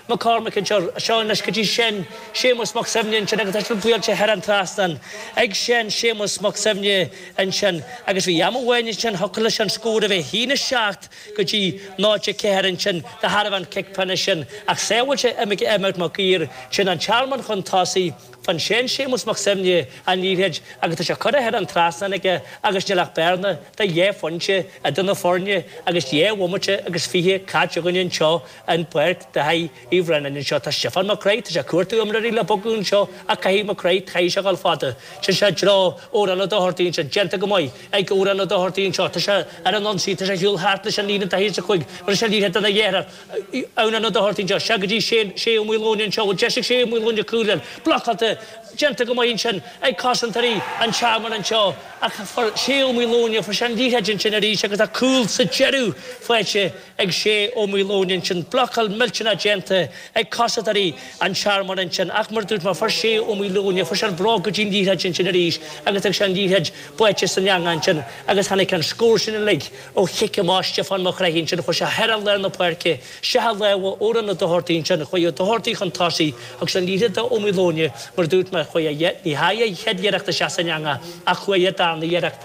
Mac Cormaic ansin, Seán leis go dtí Seán Séamus Mac Suibhne ansin agus leis an liathróid thar an trasnán ag Seán Séamus Mac Suibhne ansin agus bhí am amháin ansin thiocfadh leis an scór a bheith haon a seacht go dtí náid a ceathair ansin de thairbhe an chic phenna sin ach shábháil sé Emmet Mac Uidhir sin an Tearmann chun tosaigh fuair Seán Séamus Mac Suibhne an liathróid agus tá sé curtha thar an trasnán aige agus níl ach bearna de dhá phointe idir na foirne agus dhá bhomaite agus fiche caite againn anseo. an pháirc de thairbhe Uí Bhraonáin anseo. Tá Stiofán Mac Craith, tá sé ag cuartú imreoirí le bogadh anseo ach caithfidh Mac Craith í a fhágáil fada. Sin sé i dtreo Órán Ó Dochartaigh ansin, déanta go maith ag Órán Ó Dochartaigh anseo, tá sé ar an ionsaí, tá sé ag siúl thart leis an líne daichead is a cúig, mar is é liathróid do na léithreach, Eoghan Ó Dochartaigh anseo, sea go dtí Shane, Shay Ó Maoileoin anseo, bhuel deis ag Shay Ó Maoileoin le cúl ann, blocáilte, déanta go maith ansin ag cosantóirí an Tearmainn anseo ach fuair Shay Ó Maoileoin, fuair sé an liathróid ansin arís agus tá cúl sa deireadh faighte ag Shay Ó Maoileoin ansin, blocáil millteanach déanta ag cosantóirí an Tearmainn ansin, ach mar a dúirt mé, fuair Shay Ó Maoileoin, fuair sé an bróg go dtí an liathróid ansin arís agus d'fhág sé an liathróid báite san eangach ansin agus tháinig an scór sin uilig ó chic amach Stiofán Mac Craith ansin, chuir sé thar lár na páirce, sciobadh lámha Órán Ó Dochartaigh ansin, chuaigh Ó Dochartaigh chun tosaigh, thug sé an liathróid do Ó Maoileoin, mar a dúirt mé, chuaigh a, ní dheachaigh a chéad iarracht isteach san eangach ach chuaigh a darna iarracht,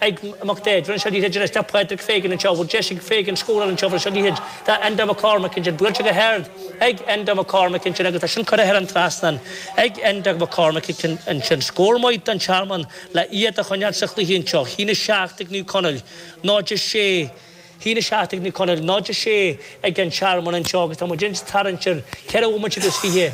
ag Mac Daid, an liathróid anois, ag Pádraig Fagan anseo, bhfuil deis ag Fagan scóráil anseo, buail sé an liathróid go dtí Enda McCormack ansin, buailte go hard ag Enda McCormack ansin agus tá sin curtha thar an trasnán ag Enda McCormack ansin, scór maith don Tearmann le iad a choinneáil sa chluiche anseo, haon 7 ag Naomh Conaill, 0-6, haon 7 ag Naomh Conaill, 0-6 ag an Tearmann anseo agus tá muid anois ag tarraingt ar cheithre bhomaite agus fiche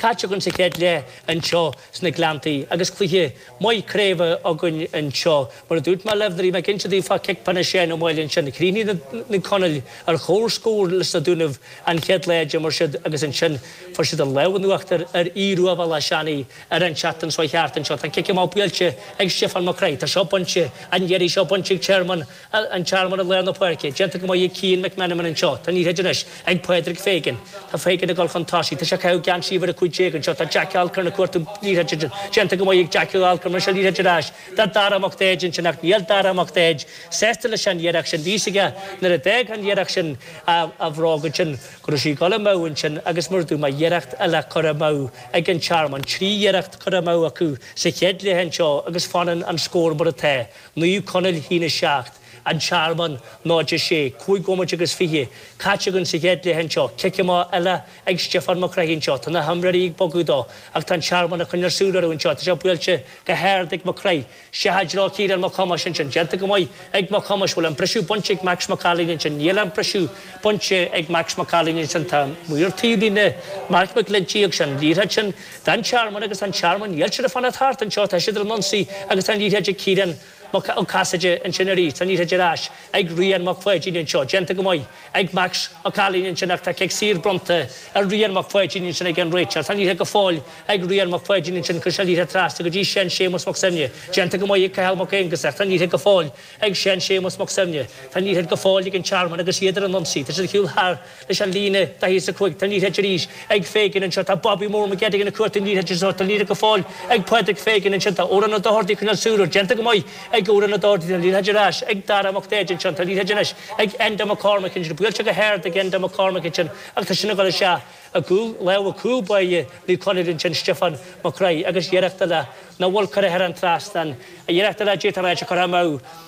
caite againn sa chéad leath anseo. sna Gleanntaí agus cluiche maith craoibhe againn anseo. Mar a dúirt mé libh, nuair a bhí mé ag inse daoibh fá chic peanna Sheáin Ó Máille ansin, chríochnaigh na Conallaigh ar chomhscór leis na Dúnaibh an chéad lá a d'imir siad agus ansin fuair siad an lámh in uachtar ar Aodh Ruadh Bhéal Átha Seanaigh ar an tseachtain seo chuaigh thart anseo. Tá cic amach buailte ag Stiofán Mac Craith. Tá seo bainte, an iarraidh seo bainte ag Tearmann. An Tearmann i lár na páirce, déanta go maith ag Cian McMenamin anseo. Tá an liathróid anois ag Pádraig Fagan. Tá Fagan ag dul chun tosaigh. Tá sé ag caitheamh geansaí uimhir a cúig déag anseo. Tá Jack Alcorn ag cuartú an liathróid, déanta go maith ag Jackie Alcorn. Mar sin, an liathróid ar ais do Dara Mac Daid ansin, ach níl Dara Mac Daid sásta leis an iarracht sin. Bhí's aige nuair a d'fhág an iarracht sin a bhróg ansin, go raibh sí ag dul amú ansin agus mar a dúirt mé iarracht eile curtha amú ag an Tearmann. Trí iarracht curtha amú acu sa chéad leath anseo agus fanann an scór mar atá. Naomh Conaill Shín 7, An Tearmann 0 6, cúig bhomaite agus fiche caite againn sa chéad leath anseo, cic amach eile ag Stiofán Mac Craith anseo, tá na himreoirí ag bogadh dó ach tá an Tearmann ag coinneáil súil orthu anseo, tá sé buailte go hard ag Mac Craith, i dtreo Chiaráin Mac Thomáis ansin, déanta go maith ag Mac Thomáis, bhfuil an briseadh bainte ag Max Mac Cailín ansin, níl an briseadh bainte ag Max Mac Cailín ansin, tá Maor Taobhlíne Marc Mac Glinntí ag rá seo an liathróid sin, Tá an Tearmann agus an Tearmann Dheiltiúir fanacht thart anseo, tá siad ar an ionsaí agus tá an liathróid ag Ciarán Ó Casaide ansin arís, tá an liathróid ar ais ag Rian Mac Pháidín anseo, déanta go maith ag Max Mac Cailín ansin ach tá cic saor bronnta ar Rian Mac Pháidín ansin ag an réiteoir, tá an liathróid go fóill ag Rian Mac Pháidín ansin, chuir sé an liathróid trasna go dtí Sean Séamus Mac Suibhne, déanta go maith ag Cathal Mac Aonghusa, tá an liathróid go fóill ag Sean Séamus Mac Suibhne, tá an liathróid go fóill ag an Tearmann agus iad ar an ionsaí, tá siad ag siúl thart. leis an líne daichead a cúig, tá an liathróid arís ag Fagan anseo, tá Bobby Mór Mac Gearailt ag cuartú an liathróid agus tá an liathróid go fóill ag Pádraig Fagan ansin, tá Odhrán Ó Dohordaí ag coinneáil súil air déanta go maith ag Odhrán Ó Dohordaí, tá an liathróid ar ais ag Dara Mac Dáibhéid ansin, tá an liathróid anois ag Enda McCormick ansin, buailte go hard ag Enda McCormick ansin agus tá sin ag dul isteach i gcúl lámha cúl báire Naomh Conaill ansin, Stiofán Mac Craith agus iarracht eile, nó bhuel, curtha thar an trasnán, iarracht eile a d'fhéadfadh an áit a chur amú.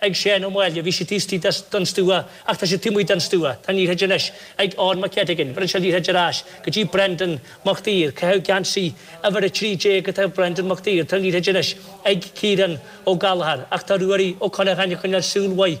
ag Seán Ó Máille, bhí sé taobh istigh den stua ach tá sé taobh amuigh den stua, tá an liathróid anois ag Eoin Mac Eiteagáin, bhronn sé an liathróid ar ais go dtí Brendan Mac Daoir, ag caitheamh geansaí uimhir 13 go taobh Brendan Mac Daoir, tá an liathróid anois ag Kieran Ó Gallagher ach tá Ruairí Ó Concheanainn ag coinneáil súil mhaith